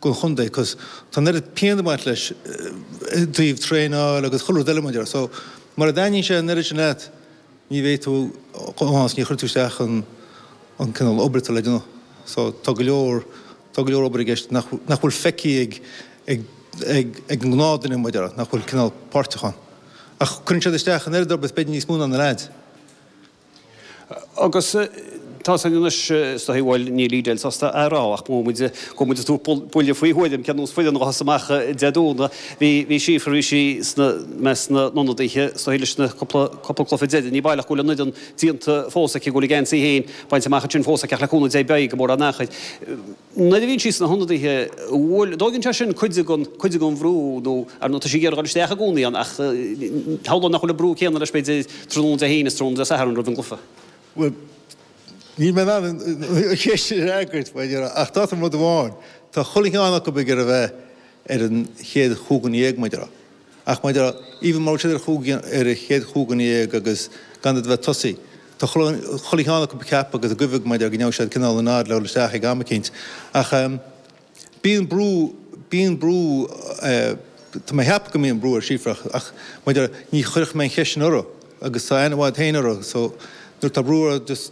gon chondae cos tá an oiread pian ag baint leis i dtaobh traenáil agus chuile rud eile mar a déarfá so mura dtaitníonn sé an oiread sin leat ní bheidh tú chomh maith agus ní chuirfidh tú isteach an an cineál obair atá le déanamh so tá go leor tá go leor obair i gceist nach nach bhfuil feicthe ag ag ag ag an ngnáthdhuine mar a déarfá nach bhfuil cineál páirteach ann ach cuireann siad isteach an oiread nó b'fhéidir níos mó ná na leaids. Agus tá san anois, is dóigh. Bhuel, níl Edel sásta é a rá, ach mhol muid, chuaigh muid ag tabhairt buille faoi thuairim cén nós foireann a ghabhfas amach Dé Domhnaigh. Bhí, bhí Síofra, bhí sí sna, i measc na n-ionadaithe, is dóigh, leis na cúpla, cúpla cluiche deiridh. Ní baileach go bhfuil an fhoireann déanta fós aici, go bhfuil a geansaí féin bainte amach ansin fós aici, ach le cúnamh Dé beidh, i gcomóradh an Earthair. Nuair a bhíonn sí sna hionadaithe, bhuel, an dtógann sé sin cuid den, cuid den bhrú nó, ar ndóigh, tá sí ag iarraidh dul isteach i gcónaí ann ach shamhlóinn nach bhfuil an brú céanna leis, b'fhéidir, tráthnóna Dé hAoine is tráthnóna Dé Satharn roimh an gcluiche. Bhuel, níl mé in ann an cheist sin a fhreagairt, mar a déarfá, ach d'áiteoinn rud amháin, tá chuile cheann acu ag iarraidh a bheith ar an chéad chúig dhuine dhéag, mar a déarfá. Ach mar a déarfá, even mura raibh siad ar chúig ar an chéad chúig dhuine dhéag agus gan iad a bheith ag tosaí, tá chuile cheann acu ag ceapadh agus ag guibhe mar a déarfá go ndéanfadh siad cineál an oiread le dhul isteach ag am eicínt. Ach bíonn brú, bíonn brú, tá mé a cheapadh go mbíonn brú ar Síofra ach, ach mar a déarfá, ní chuirfidh mé an cheist sin uirthi agus tá a ainm fhad féin uirthi so nuair atá brú uirthi just,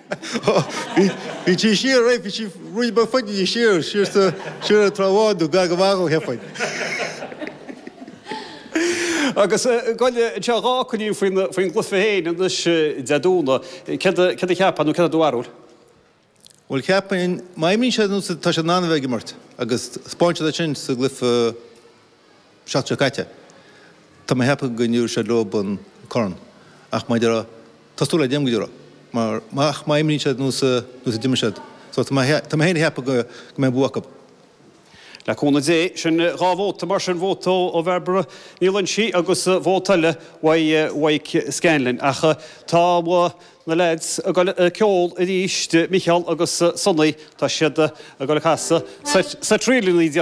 Bhí sí siar, eh? Bhí sí rud beag faide di siar, siar sa, siar ag Trá Bháin nó Gleann an Mhaghail, cheapfainn. Agus ghoil anseo dhá coinín faoin, faoin gcluife féin, anois Dé Domhnaigh, céard a, céard a cheapfá nó céard é do bharúil? Bhuel cheapfainn, má imríonn siad nós atá siad in ann a bheith ag imirt agus 'spáin siad é sin sa gcluife. seachtain seo caite. Tá mé ag ceapadh go dtabharfaidh siad leob an corn, ach mar a déarfá, tá súil agam go dtabharfaidh, mar ach má imríonn siad nós a d'imir siad, so tá mé, tá mé féin ag ceapadh go mbeidh bua acu. Le cúnamh Dé, sin dhá vóta mar sin, vóta ó Bhairbre Ní Loingsigh agus vóta eile uaidh Mhaidhc Scanlon. Ach tá na lads ag dul ag ceol arís, Micheál agus Sonny, tá siad ag dul ag casadh seit ríleanna.